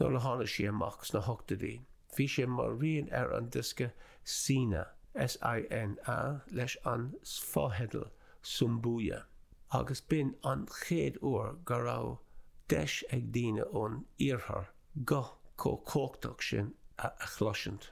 nuair a tháinig sí amach sna hochtaidí, bhí sé mar rian ar an diosca Sína, S-i-n-a, leis an fotheideal Sumbuya, agus b'in an chéad uair go raibh deis ag daoine ón Iarthar guth chomh cumhachtach sin a chloisint.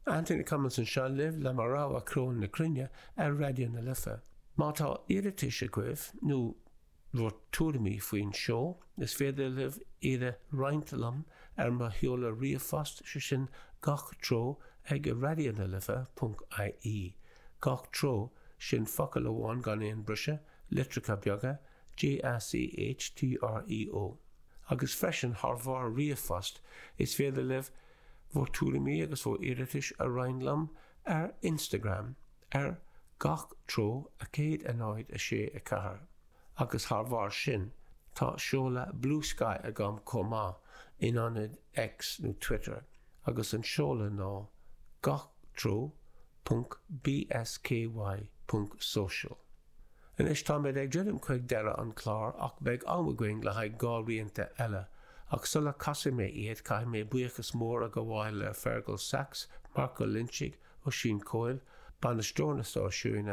Anthony Cummins anseo libh le mo rogha Ceol na Cruinne ar Raidió na Life. Má tá iarratais agaibh nó bhur tuairimí faoin seó. Is féidir libh iad a roinnt liom ar mo sheoladh ríomhphost, sé sin Gach Treo ag Raidió na Life ponc IE. Gach Treo, sin focal amháin gan aon briseadh, litreacha beaga, G-A-C-H-T-R-E-O. Agus freisin, thar bharr ríomhphost, is féidir libh bhur tuairimí agus bhur iarratais a roinnt liom ar Instagram. ar gach treo, a 1, 0, 6, 4, agus thar bharr sin, tá seoladh Bluesky agam chomh maith, in ionad X nó Twitter, agus an seoladh ná gach treo ponc bsky ponc social. Anois, táimid ag druidim chuig deireadh an clár ach beidh am againn le haghaidh dhá rianta eile, ach sula casfaidh mé iad, caithfidh mé buíochas mór a ghabháil le Fergal Sachs, Marco Lynch, Oisín Coyle, Bainisteoir an Stáisiúin,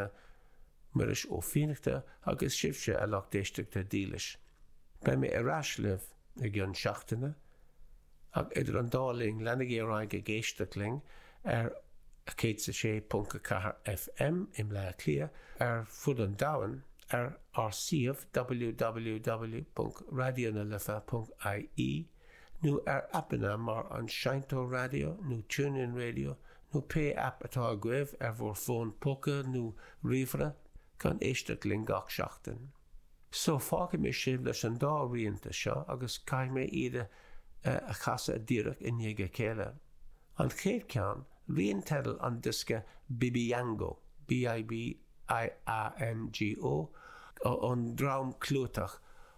Muiris Ó Fiannachta agus sibhse a lucht éisteachta dílis. Beidh mé ar ais libh i gcionn seachtaine ach idir an dá linn leanaigí ar aghaidh ag éisteacht linn ar 106.4 FM i mBleá Cliath, ar fud an domhain ar ár suíomh www.raidionalife.ie. nó ar aipeanna mar an Seinnteoir Raidió nó TuneIn Radio nó pé aip atá agaibh ar bhur bhfón póca nó ríomhaire, chun éisteacht linn gach seachtain. So, fágfaidh mé sibh leis an dá rianta seo agus caithfidh mé iad a chasadh díreach i ndiaidh a chéile. An chéad cheann, rian teidil an diosca Bibiango, B-I-B-I-A-N-G-O, ón dream clúiteach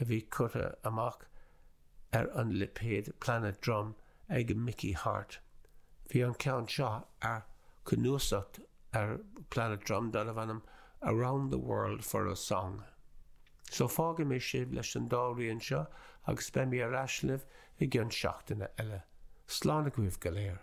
a bhí curtha amach ar an lipéad Planet Drum ag Mickey Hart. Bhí an ceann seo ar cnuasacht ar Planet Drum darbh ainm Around the World for a Song. So fágfaidh mé sibh leis an dá rian seo agus beidh mé ar ais libh i gcionn seachtaine eile. Slán agaibh go léir.